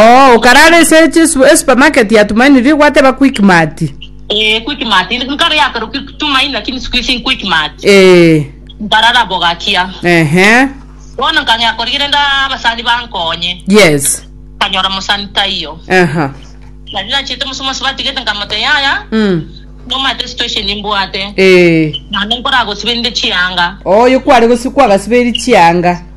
Oo, okarara ase esupermarket ya Tumaini riria gwateba Quickmart. Ee. Ehe. Yes. Aha. Mmh. Ee. Oyo kware gosibe, kwagasibeirie chianga.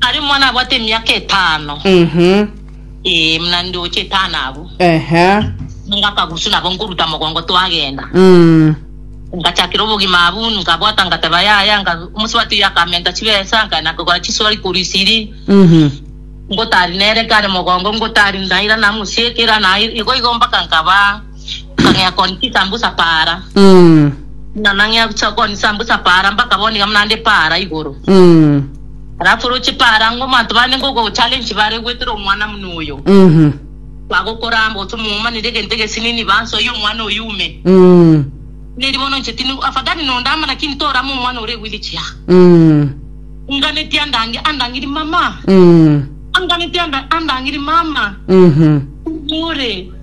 Aria omwana abwate emiaka etano, Mhm. ee, muna ndoche etano abwo, Ehe. nigo akagusu nabo nkoruta mogongo twagenda. Mm. Ngachakera obogima abwo, nkabwata ngateba yaya, nga omosubati oyo akamenta chibesa, nkaenda nkagora chisuari korwa esiri, Mhm. ngotari nere kare mogongo, ngotari ndaira namusiekera, naira igo igo mpaka nkaba Nkagea kooni chisambusa paara. Buna nang'ea gochia kooni chisambusa paara, mpaka bono iga buna nde paara igoro. Alafu roche paara ng'a omonto bande ngogo challenge bare gwetera omwana muna oyo. Bagokora amo gose momanire egento egesini ni ba nsoyie omwana oyo ume. Buna erio bono inche tindi afadhali nondama lakini torama omwana oria egwire chiaga. Anganetie andange andangiri mama. Anganetie anda andangiri mama. Ore.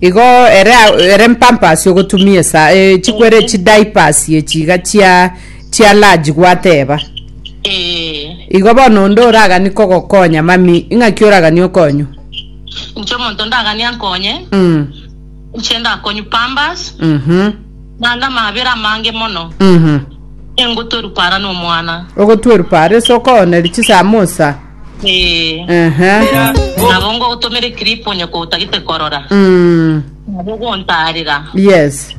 Igo ere ere mpampasi ogotumia esa eh, chikwere Eh. chidaipasi echi iga chia chia large gwateba Eh, igo bono onde oragani kogokonya mami ing'aki oragani okonywa inche omonto ndagania nkonye mm. inche ndakonyu pambas mhm naende amabere amange mono mhm engotoru para nomwana ogotweru pare ase okooneri chisamosa Ee. Aha. Nabo ngogotomera eclip onye kotagete korora. Mm. Nabo ogontarera. Yes.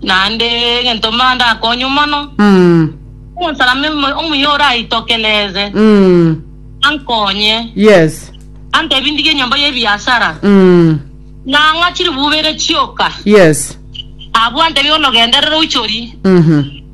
Naende egento mba ndakonywe mono. Mm. Omonsalaba omo- omuya oraitokereze. Mm. Ankonye. Yes. Antebi ndige enyomba y'ebiasara. Mm. Nang'a chiribubere chioka. Yes. Abwo antebi bono genderera oichori. Mhm.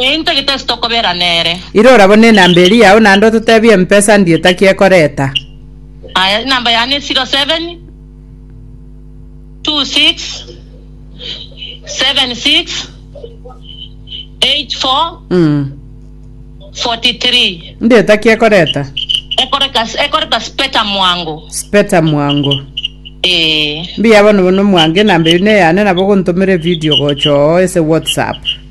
Intwe gete ase tokobera nere. Irora bono enamba eria yao naende ototebie empesa ndie taki ekoreta. Aya, enamba yane ne 07 26 76 84 43. Ndie taki ekoreta. Ekoreka ekoreta speta mwango. Speta mwango. Ee. Mbuya bono bono mwango enamba eyio neyane nabo ogontomera evidio gocha oo ase WhatsApp.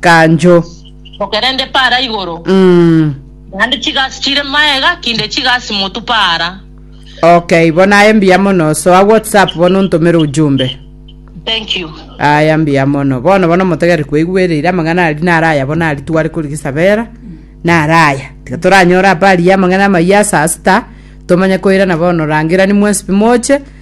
kanjo. Okerende paara igoro, Mm. naende chigasi chire maega kinde chigasi motu paara. Okay, bono aye mbuya mono. Soa WhatsApp bono ontomere ujumbe. Thank you. Aya mbuya mono. Bono bono motegere kweigwereire amang'ana aria naro aya bono aria tware korigisabera. Naro aya. Tiga toranyore apa aria amang'ana amayia ase asita. Tomanye koirana bono rangerani mwensipi moche.